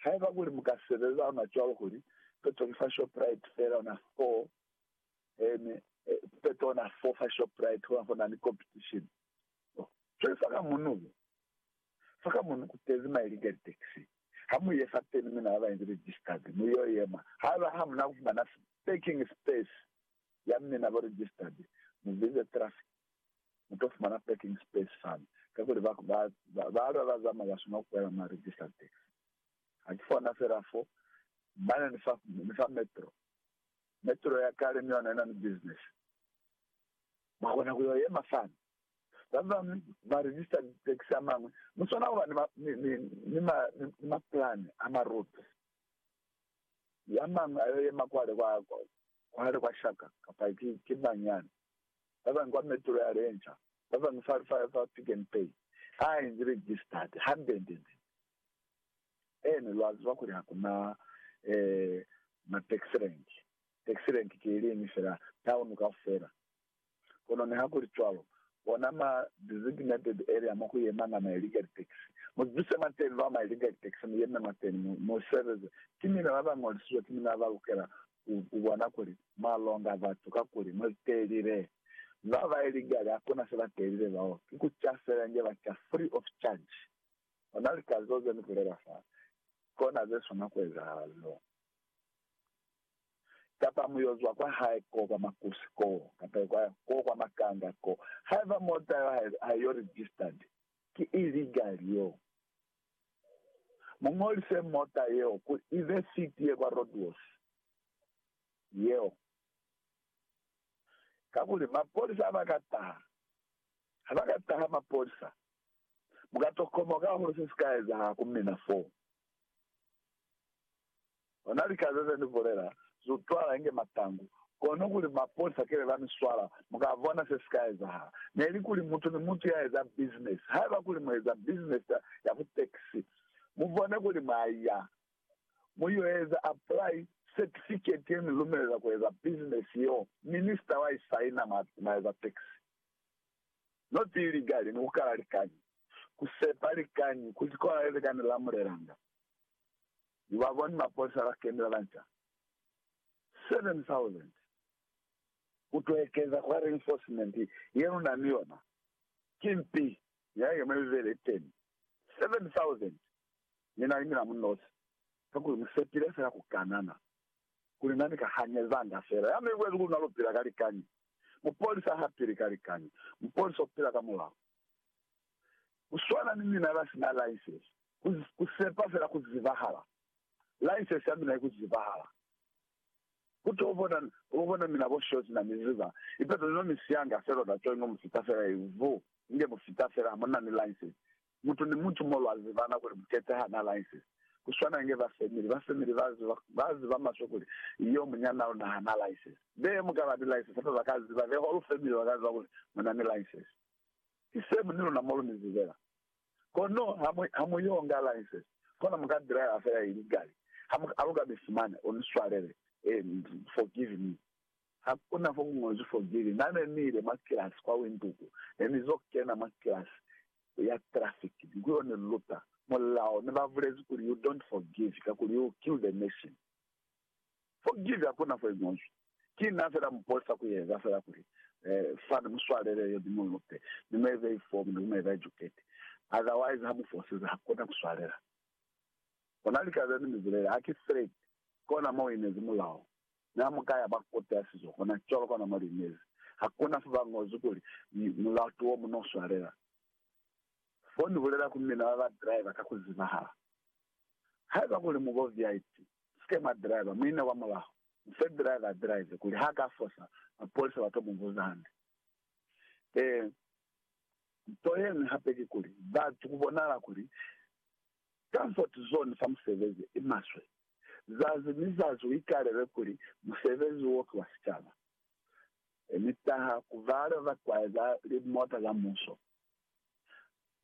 Haiba kuli mu ka sebeza ona cwalo kuli peto ki fa Shoprite fela ona fo ene peto ona fo fa Shoprite hona fo na ni competition oh cwale fa ka munu fa ka munu ku tezi ma illegal taxi ha mu ye fa teni mina ba ba inzi registered mu yo yema haiba ha muna ku fumana parking space ya mi naba registered mu visa traffic mu to fumana parking space fani kakuli ba ba ba balwa ba zama ba suna kuela ma registered taxi ha ki fona fela fo mane ni fa ni fa metro metro ya kale ni yona ina ni business ba kona ku yo yema fani ba ba ma registered taxi a mangwe mu sona kuba ni ma ni ni ni ma, ni ma plan a ma route ya mangwe ayo yema kwale kwa Kwale kwa shaka, kapa ki, ki mañana. Babañwi kwa Metro ya Lenca, babañwi fa, fa, fa Pick and Pay. Ha a inzi registered, handendende. Ene, lwa ziba kuli hakuna, eh, ma taxi rank. Taxi rank ki iliñwi fela, town kaufela. Kono nihakulicwalo, ona ma designated area mo ku yemanga ma illegal taxi. Mu zibise mwateñi bao ma illegal taxi, mu yeme mwateñi, mu, mu sebeze. Ki mina ba ba ñolisizwe, ki mina ba ba lukela ku, ku bona kuli mwa longa batu, kakuli mwa ziteelile. Ba ba illegal hakuna se ba teelile bao, ki ku ca fela inge ba ca free of charge. Ona lika zeo ze ni bulela fa, kona ze swana ku ezahala leo. Kapa mu yo zwa kwa hae ko kwa makusi koo, kapa kwa, ko kwa makanga koo. Haiba mota yo ha, ha yo registered, ki illegal yo. Mu ñolise mota yeo ku ibe fleet ye kwa roadworth yeo. Kakuli mapolisa ha ba ka taha, ha ba ka taha mapolisa, mu ka to komoka hahulu se si ka ezahala ku mina foo. Ona lika zeze ni bulela, Zu twala inge matangu, kono kuli maponisa kebe ba mi swala, mu ka bona se si ka ezahala. Neli kuli mutu ni mutu ya eza bizinesi, haiba kuli mu eza bizinesi ya ku tekisi, mu bone kuli mwa ya, mu yo eza apply setifiketi ye mi lumelela ku eza bizinesi yeo, minisita wa i saina, mwa, mwa eza tekisi. No tii ligali ni ku kala likañi, ku sepa likañi, ku zikola leze ka ni lamulelanga. ni ba boni mapolisa ba kenela ba nca 7,000 ku to ekeza kwa reinforcement ye lu na ni yona. Ki mpi ya ye mwe mibeli ye teni 7,000 ni na ni mina mu nosi, kakuli mu sepile fela ku kanana kuli na ni ka hanyezanga fela. Ya mi bulezi kuli na lu pila ka likañi. Mupolisa ha pili ka likañi. Mupolisa u pila ka mulao. Ku swana ni mina ba sina laisesi, ku, ku sepa fela ku zibahala. Laisesi ya mina i ku zibahala. Ku to bona, bo bona mina bo shozi na mi ziba. Ipeto ni no mi sianga felo na coingo mu fita fela i vu, inge mu fita fela ha mu na ni laisesi. Mutu ni mutu mo lwa zibana kuli mukete ha na laisesi. Ku swana inge ba family, ba family ba ziba, ba ziba maswe kuli, Yo, munyana luna ha na laisesi. Be mu ka ba ni laisesi, hape ba ka ziba, the whole family ba ka ziba kuli mu na ni laisesi. i same ni luna mo lumizi fela. Kono ha mu, ha mu yo nga license, kona mu ka driver fela ili gali. Ha mu, ha lu ka bisi mane, u ni swalele, and forgive me. Ha ku na fo ku ñozwi forgiving. Na ne ni ile mwa kilasi kwa Windhoek, ne ni zo kena mwa kilasi ya traffic, ni ku yo ni luta mulao, ne ba bulezi kuli, You don't forgive, kakuli you kill the nation. Forgive hakuna fo iñozwi. Ki na fela muposa kueza fela kuli, Eh, Fani, muswalele yo, ni mulute, ni mu eze ifomu, ni ku mu eza ijuketi. Otherwise, ha mu fosize, hakuna kuswalela. Kona lika zeni mi bulele, Ha ki threat, kona mo uinezi mulao. Mi ha mu ka ya ba kote ya sizo, kona cwalo, kona mo liinezi. Hakuna fo ba ñozi kuli, Mulao ki wo mu no swalela. Fo ni bulela ku mina ba ba driver ka ku zibahala. Haiba kuli mu bo VIP, Usike mwa driver muina kwa mulaho. Mufe driver a drive kuli ha ka fosa mapolisa ba to mu vuza hande. Ee, nto yeñwi hape ki kuli, batu ku bonahala kuli comfort zone fa musebezi i maswe. Zazi ni zazi u ikalelwe kuli musebezi wo ki wa sicaba. Mi taha ku bale ba kwaeza limota za muso,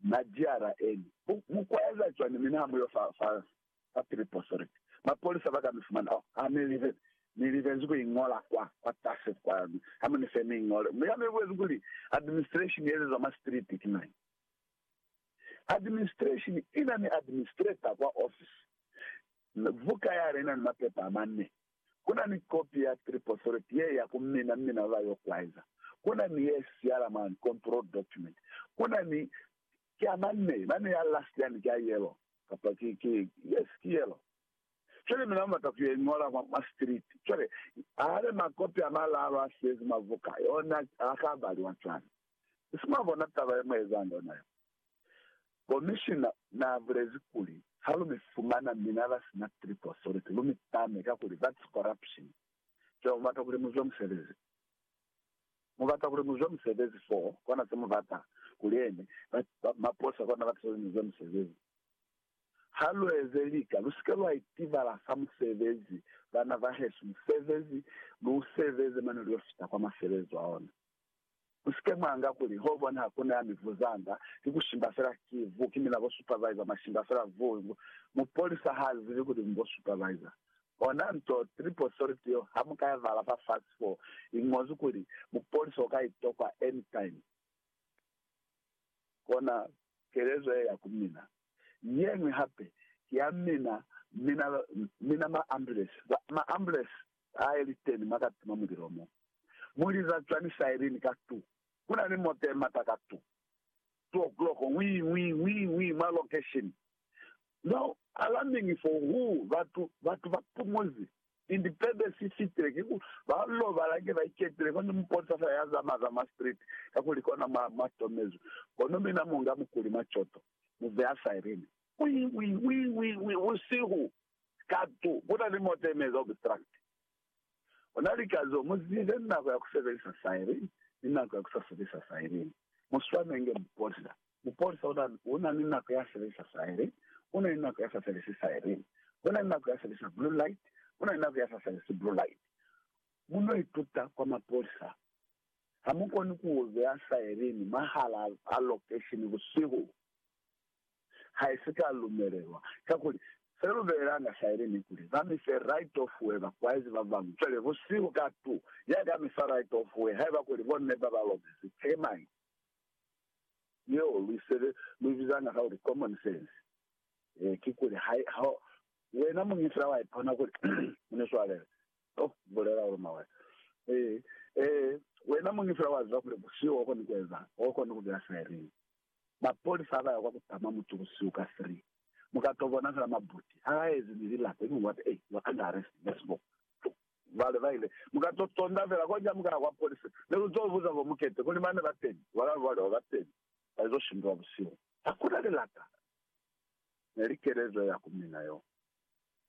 ma GRN. Mu kwaeza cwani mi ni ha mu yo fa, fa Kwa Triposory, mapolisa ba ka mi fumana. Oh, ha mi libe, mi libezi ku i ñola kwa, kwa tasi kwa. Ha mu ni fe mi i ñole. Mi ha mi buezi kuli, Administration ye ezezwa mwa street ki mañi? Administration i na ni administrator kwa ofisi. Buka yale i na ni mapepa a mane. Ku na ni kopi ya Triposory ye ya ku mina, mmina wa ba yo kwaeza. Ku na ni ye siala mwa control document. Ku na ni. Ki a mane, mane ya last yani ki a yellow. Kapa ki, ki, yes, ki yelo. Cwale mina mubata ku yo iñola mwa, mwa street. Cwale, hale makopi a malaalu a siyezi mwa buka, yona ha ka baliwa cwale. Nisi mwabona taba ye mu ezanga yona yo? Komishina na bulezi kuli, Ha lu mi fumana mina ba sina trip authority, lu mi tame, kakuli that's corruption. Cwale mubata kuli mu zwe musebezi. Mu bata kuli mu zwe musebezi foo, kona se mu bata kuli ene, ba, ba, maposa kona bata kuli mu zwe musebezi. Ha lu eze lika, lu si ke lwa itibala sa musebezi, bana bahesu, musebezi, lu u sebeze mane lu yo fita kwa maselezo a ona. Mu si ke mwa nga kuli, ho bona ha ku na ya mi vuzanga, ki ku shimba fela, ki vu, ki mina bo supervisor, mwa shimba fela vu, vu. Mupolisa ha zibi kuli mu bo supervisor. Ona nto Triple Solid yo ha mu ka i vala fa fasi fo i ñozwi kuli, Mupolisi o ka i tokwa anytime. Kona kelezo ye ya ku mina. Ye ñwi hape ki ya mina, mina, mina ma ambulance. Ba, ma ambulance a ye li teni mwa ka tima mulilo mo. Mu liza cwani siren ka tu? Ku na ni mota ye mata ka tu. Two o'clock, Wii, wii, wii, wii, mwa location. Za alamingi fo hu batu, batu ba pumuzi, indi pebe si fitile, kiku ba lobala nge ba iketile, kono muponsa fela ya zama za mwa street, kakuli kona mwa, mwa tomezwi. Kono mina mu nga mukuli mwa coto, mu beya siren. Wii, wii, wii, wii, wii, busihu, katu, kuna ni mota ye mi eza obstruct. Ona lika zo mu zibe ni nako ya ku sebelisa sairi ni nako ya ku sa sebelisa sairi. Mu swanenge mupolisa. Mupolisa una, una ni nako ya sebelisa sairi, una ni nako ya sa sebelisi sairi. Una ni nako ya sebelisa blue light, una ni nako ya sa sebelisi blue light. Mu no ituta kwa mapolisa. Ha mu koni ku beya sairi mwahal'a lokesheni busihu. ha i si ka lumelelwa, kakuli se lu belelanga sa ili ni kuli ba mi fe right of way bakwaizi ba bañwi. Cwale busihu ka tu, ya ka mi fa right of way haiba kuli bo neba ba lobezi termite yeo lu isebe lu i bizanga ka kuli common sense. Ee, kikuli ha i, ha wena muñi fela wa ipona kuli mu ni swalele. Oh, ku bulela ulu mawela. Ee, ee, wena muñi fela wa ziba kuli busihu ho koni ku ezanga, ho koni ku beya siringi. Mapolisa ha ba ya kwa ku tama mutu busihu ka 3, mu ka to bona fela mabuti ha a ezi ni lilato ili what a you are under arrest in a small vale ba ile mu ka to tonda fela konja mu ka ya kwa polisi mi lu to buza bo mukete kuli mane ba teni wala lu bale ba teni ba izo shindula busihu. Ha ku na lilata ne li kelezo ya ku mina yo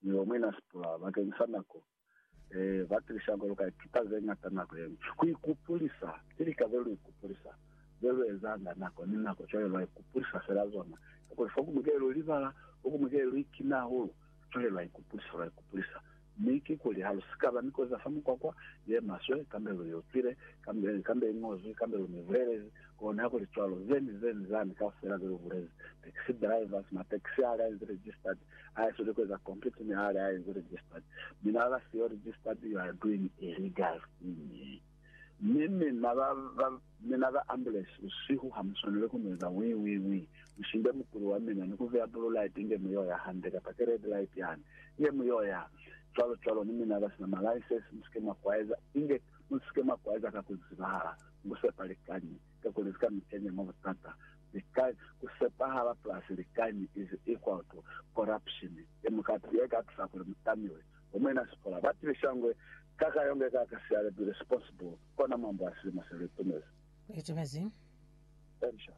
mi bo mwina sipula bakeng sa nako e ba tilisa ko lu ka ituta ze ñata nako ye ñwi. Ku ikupulisa ki lika ze lu ikupulisa ze lu ezanga nako ni nako, cwale lwa ikupulisa fela zona. Kakuli fo kuñwi ke lu libala, fo kuñwi ke lu ikina hahulu, cwale lwa ikupulisa, lwa ikupulisa. Mi kikuli ha lu si ka ba ni kozi ya fa mukwakwa ye maswe, kambe lu i utwile, kambe, kambe i ñozwi, kambe lu mi bulelezi, koni ha ku li cwalo, ze ni ze ni zani kaufela ze lu bulezi, taxi drivers, ma taxi ha li a inzi registered, I sole ku eza complete mi hali a enzi registered. Mi na ba siyo registered, you are doing illegal thing. Mi mina ba, ba, mina ba ambulance busihu ha mu swanele ku ni eza wii, wii, wii. Mu shimbe mukuli wa mina ni ku vea blue light inge mu y'o ya hande, kapa ki red light yani, inge mu y'o ya. Cwalo, cwalo. Ni mina ba sina ma license, mu si ke mwa kwaeza, inge mu si ke mwa kwaeza ka ku zibahala, ni ku sepa likañi, kakuli li ka mi kenya mwa butata. likañi, ku sepahala plus likañi is equal to corruption, ye mukati ye ka tusa kuli mu tamiwe. Bo Muena Siphola ba tibiša ngwe, Kaka yonge kaka si ale be responsible, kona mwambo wa silimo se lu itumezi. Lu itumezi. Elisha.